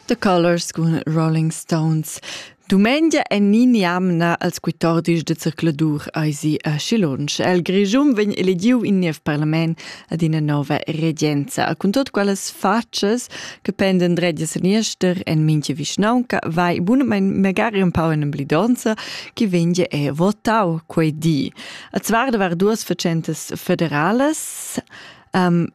The Colors cun Rolling Stones. Dumengia en ni niamna als quitordis de zercladur eisi a Schilunsch. El Grischun vegn elegiu in niev parlament ad ina nova regenza. Cun tot quelles facas che penden dretga seniester en minche vischnaunca vai bunamain magari un pau in blidonza che venge e votau quei di. A zvar da var duas facentas federales um,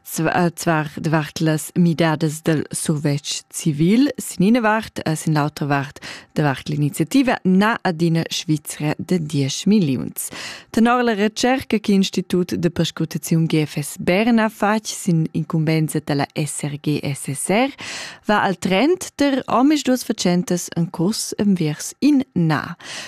Zwar devart las midadas del survetsch civil sin ina vart e sin l'autra vart devart l'iniziativa na adina Svizra de 10 milliuns. Tenor la recerca che l'Institut de Perscrutaziun GFS Bern ha fatg sin incumbensa della SRG-SSR va al trend der omis duas facentas en curs enviers in na.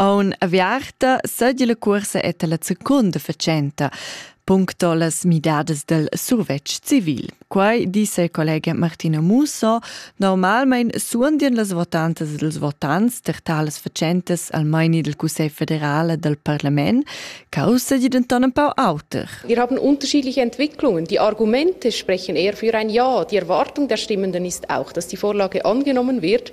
Aun aviarta seigi la cuorsa eta la secunda fatschenta puncto las midadas del survetsch civil. Quai disse il collega Martino Musso, normalmein suondien las votantas e dels votants ter talas fatschentas al meini del Cussegl federale del Parlament, causa di denton ein pau auter. Wir haben unterschiedliche Entwicklungen. Die Argumente sprechen eher für ein Ja. Die Erwartung der Stimmenden ist auch, dass die Vorlage angenommen wird.